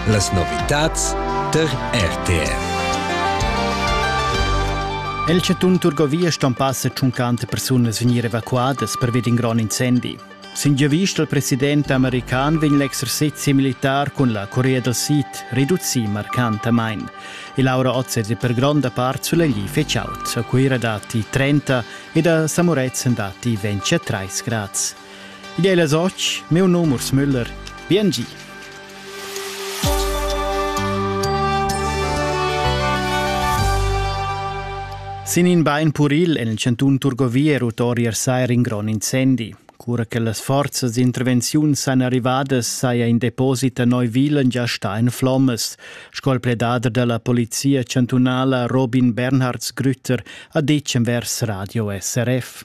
Las novitads tar RTR. El chatun Turgovia ston passa tschuncante persunas vegnir evacuadas pervia d'in grond incendi. Sin giavist dal president american vegn l'exercizi militar cun la Corea dal Sid reducì marcantamain. Il Laura Ozzesi per gronda part sulegli feciaut. A Cuira datti 30 ed a Samuretzen datti 23 grads. Id ei las och, meu num Urs Müller. Bien gi. Sin in bein puril en il cantun Turgovia rutori er sai in grond incendi. Cura che las forzas d'intervenziun san arrivadas saja in deposit a Neuwilen già sta en flommas, sco il pledader della polizia chantunala Robin Bernhards Grütter ha ditg envers Radio SRF.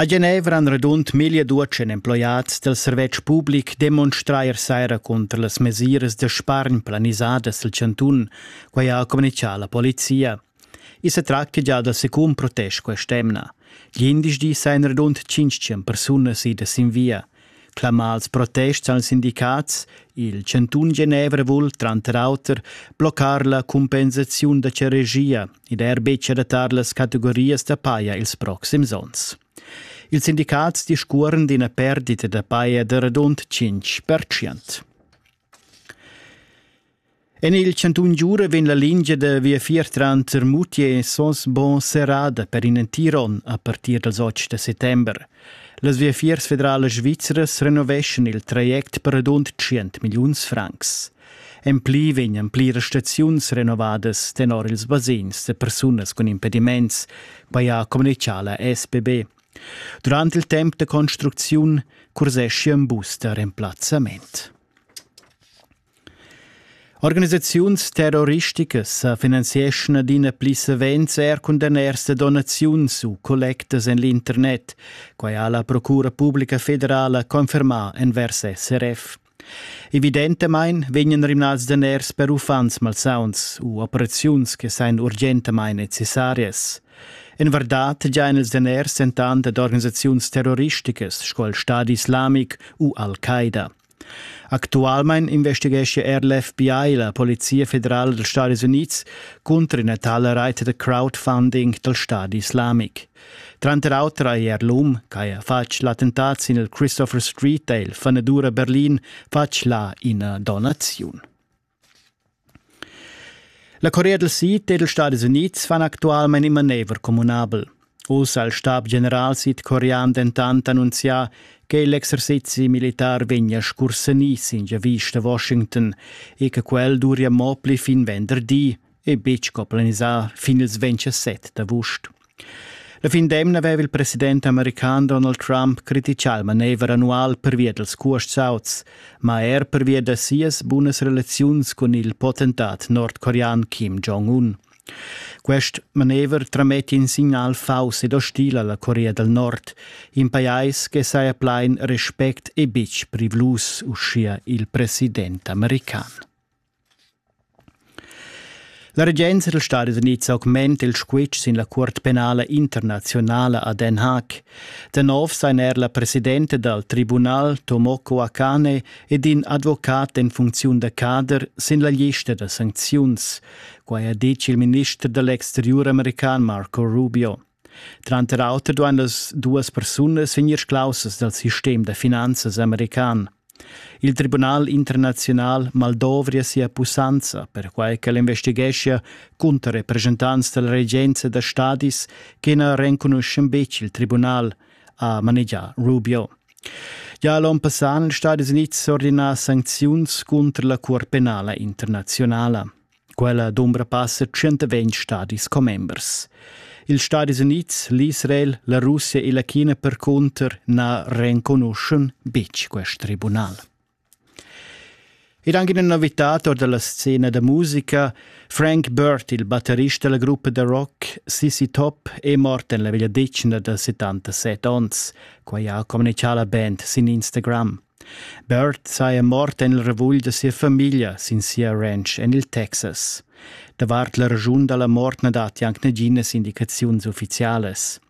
A Genevra han radund milla duatschen emploiads del servetsch public demonstrà ier saira cunter las mesiras da spargn planisadas del chantun, quai ha communichà la polizia. I sa tracta già da secun protest quest'emna. Glindesdi sajan radund tschintg persunas idas sin via. Clamà als protests als sindicats, il chantun Genevra vul tranter auter bloccar la compensaziun da ceregia ed er betg adattar las categorias da paja ils proxims onns. Ils sindicats discuoran d'ina perdita da paja da radund 5%. En il chantun Giura vegn la lingia da viafier tranter Mutier e Sosbo serrada per in entir onn a partir dals 8 da settember. Las viafiers federalas svizras renoveschan il traject per radund 100 milliuns francs. En pli vegnan pliras staziuns renovadas tenor ils basegns da persunas cun impediments, quai ha communichà la SBB. Durant il temp da construcziun curseschi in bus da remplazzament. Organisaziuns terroristicas sa finanzieschan adina pli savens er cun daners da donaziuns u collectas en l'internet. Quai ha la Procura publica federala confermà envers SRF. Evidentamain vegnan rimnads daners per uffants malsauns u operaziuns che sain urgentamain necessarias. En vardad giain els daners entant ad organisaziuns terroristicas sco il Stadi islamic u Al-Qaida. Actualmein investighescha er l'FBI, la Polizia federala dals Stadis Unids, cunter ina tala rete da crowdfunding dal Stadi islamic. Tranter auter ha er l'um che ha fatg l'attentat sin il Christopher Street e il fanedur a Berlin fatg là ina donaziun. La Corea del Sid ed ils Stadis Unids fan actualmein in manever communabel. Uss ha il stab-general sidcorean dentant annunzià che l'exercizi militar vegnia scursenì sin giavisch da Washington e che quel duria mo pli fin venderdi, e betg co planisar fin ils 27 d'avust. La fin d'emna aveva il president american Donald Trump critichà il manever annual pervia dals cuosts auts, ma er pervia da sias bunas relaziuns cun il potentat nordcorean Kim Jong-un. Quest manever trametti in signal fauss ed ostil alla Corea del Nord, in pajais che saja plein respect e betg privlus, uschia il president american. La regenza dals Stadis Unids augmenta il squitsch sin la Cuort penala internaziunala a Den Haag. Da nov sein er la presidenta dal tribunal Tomoko Akane ed in advocat en funcziun da cader sin la lista da sancziuns. Quai ha ditg il minister dall'exteriur american Marco Rubio. Tranter auter duain las duas persunas vegnir sclaussas dal sistem da finanzas american. Il Tribunal internaziunal maldovria sia pussanza, perquai ch'el investigeschia cunter representants dalla regenza da stadis che na renconuschan betg il tribunal, ha manegià Rubio. Gia l'onn passà han Stati Unids ordinà sancziuns cunter la Cuor penala internaziunala. Quella dumbra passa 120 stadis commembers. Ils Stadis Unids, l'Israel, la Russia e la China percunter na renconuschan betg quest tribunal. Ed anche in novità da la scena da musica, Frank Burt, il batterista della gruppa da rock Sissy Top, è morto nella veglia decina da 77 onns. Quai ha communicato la band sin Instagram. Bert saja mort en il ravugl da sia famiglia sin sia ranch en il Texas. Davart la raschun da la mort na datti anc naginas indicaziuns uffizialas.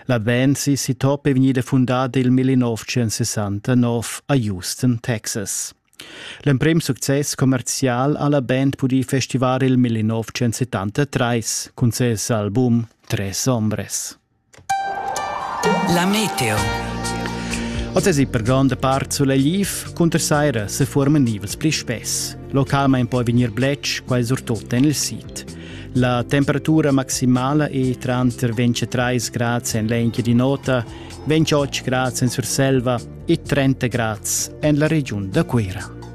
La band si Sitop è vegnida fundada il 1969 a Houston, Texas. L'emprim success commerzial ha la band pudì festivar il 1973 cun ses album Tres Ombres. La meteo. Oz es per gronda part sulegl cunter saira se forman nivels pli spess. Localmain poi vegnir bletsch, quai surtut en il sid. La temperatura maximala è tranter 23 grads en l'enchia di nota, 28 grads en Surselva e 30 grads en la regiun da Cuira.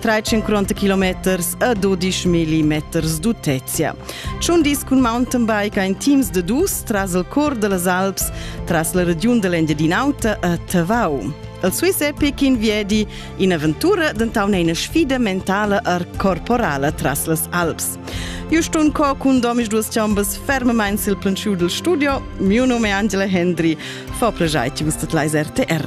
350 kilometers a 12 millimeters d'utezia. Tschun dis cun mountainbike ein teams de dus tras il cor dellas Alps, tras la regiun dell'Engiadin'Auta a Tavau. Il Swiss Epic in Viedi, un'avventura denton eine sfida mentale e corporale tras las Alps. Juston Co cun domis duas chambas fermamain sil plantschiu dil studio. Miu nome è Angela Hendry. Fa pleschair ti vus dat leis RTR.